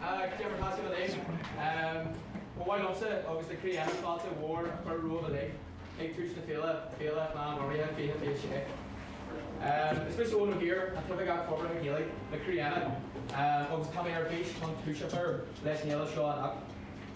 Ag déanamh taistil uilig. Ba mhaith liomsa agus le Croí Éanna fáilte mhór a chur romhaibh uilig ag tús na féile, Féile Ghleann Ghormlaithe 2026. Is mise Eoghan Ó hÍr, an tOifigeach Forbartha Gaeilge le Croí Éanna agus tá mé ar bís chun tús a chur leis an fhéile seo anocht.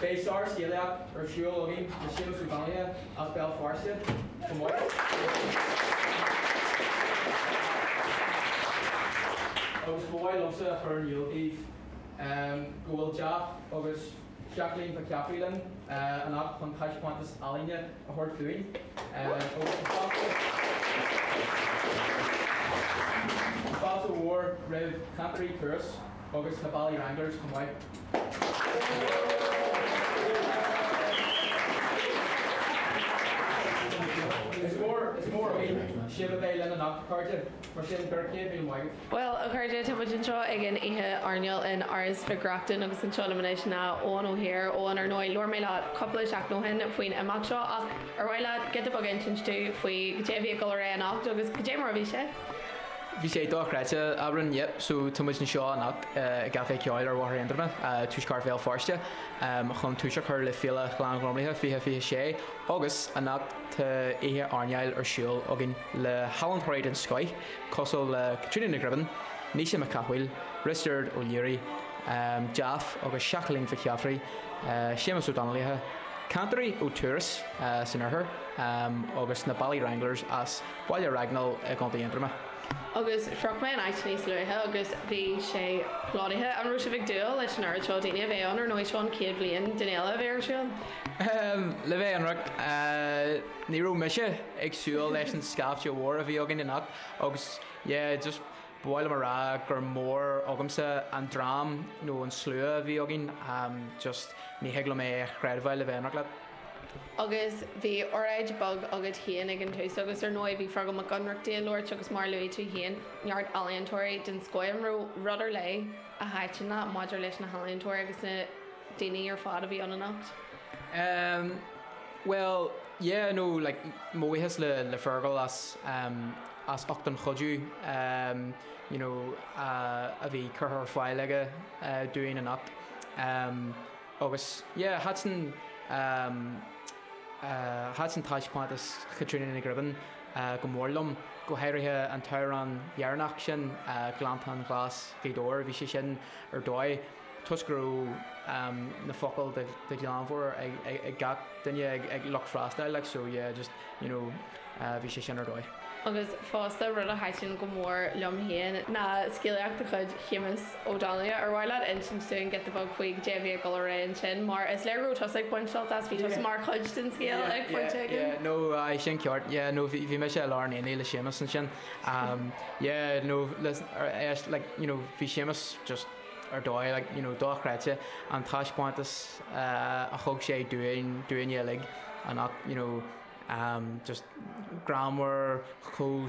Beidh sárscéalaíocht ar siúl againn le Séamus Ó Donnaile as Béal Feirste chomh maith. Agus ba mhaith liomsa a chur in iúl daoibh go bhfuil Jeff agus Jacqueline Mhic Sheafraidh linn anocht chun taispeántas ealaíne a thabhairt dúinn agus an-fháilte, fáilte mhór roimh Chantairí Thuras. agus na Ballywranglers chomh maith. Is mór againn sibh a bheith linn anocht, a chairde, mar sin beirigí céad míle maith agaibh. Bhuel, a chairde, tá muid anseo ag an oíche airneáil in Áras Mhic Reachtain agus anseo liom anois ná Eoghan Ó hÍr. Eoghan, ar ndóigh, labhair mé leat cúpla seachtain ó shin faoin imeacht seo ach ar mhaith leat giota beag a insint dúinn faoi caidé a bhí ag dul ar aghaidh anocht agus caidé mar a bhí sé? Bhí sé dochreidte, a Bhriain, yep, so tá muid anseo anocht i gCaifé Ceoil ar Bhóthar Aontroma, tuaisceart Bhéal Feirste, chun tús a chur le Féile Ghleann Ghormlaithe 2026 agus anocht tá oíche airneáil ar siúl againn le healaíontóirí den scoth cosúil le Caitríona Ní Ghribín, Naoise Mac Cathmhaoil, Risteard Ó Laoghaire, Jeff agus Jacqueline Mhic Sheafraidh, Séamus Ó Donnghaile, cantairí ó Turas san oirthear agus na Ballywranglers as Baile Raghnaill i gContae Aontroma. Agus shroich mé an áit níos luaithe agus bhí sé plódaithe. An raibh sibh ag dúil leis an oiread seo daoine a bheith ann? Ar ndóigh, seo an chéad bhliain den fhéile a bheith ar siúl. Le bheith ionraic, ní raibh mise ag súil leis an scaifte mhór a bhí againn anocht agus, yeah, just ba mhaith liom a rá gur mór agamsa an dream nó an slua a bhí againn. Just, ní thig liom é a chreidbheáil le bheith ionraic leat. Agus bhí oráid bheag agat féin ag an tús agus ar ndóigh bhí Feargal Mac Ionnrachtaigh ag labhairt agus mar a luaigh tú féin, neart ealaíontóirí den scoth. An raibh rud ar leith a thaitin leat maidir leis na healaíontóirí agus na daoine ar fad a bhí ann anocht. Ehm, bhuel, yeah, no, like, mo bhuíochas le, le Feargal as, ehm, as ucht an chuidiú, ehm, you know, a, a bhí curtha ar fáil aige, eh, dúinn anocht. Ehm. Agus yeah, thaitin, thaitin taispeántas Chaitríona Ní Ghribín go mór liom, go háirithe an t-amhrán deireanach sin, Gleanntáin Ghlas' Ghaoth Dobhair, bhí sé sin ar dóigh, toisc go raibh na focail de ghlanmheabhair ag gach duine, ag lucht freastail, like so yeah, just. you know bhí sé sin ar dóigh. Agus fosta, rud a thaitin go mór liom féin ná scéalaíocht de chuid Shéamus Ó Donnghaile. Ar mhaith leat insint dúinn giota beag faoi cad é a bhí ag dul ar aghaidh ansin, mar is léir go raibh tusa ag baint sult as, bhí tusa mar chuid den scéal ag pointe éigin? Yeah, yeah, no, aye, sin ceart, yeah, no, bhí, bhí mise i lár an aonaigh le Séamus ansin. Yeah, no, listen, aríst, like, you know, bhí Séamus just, ar dóigh, like, you know, dochreidte an taispeántas a thug sé dúinn, dúinne uilig, an, you know, just greannmhar, chomh.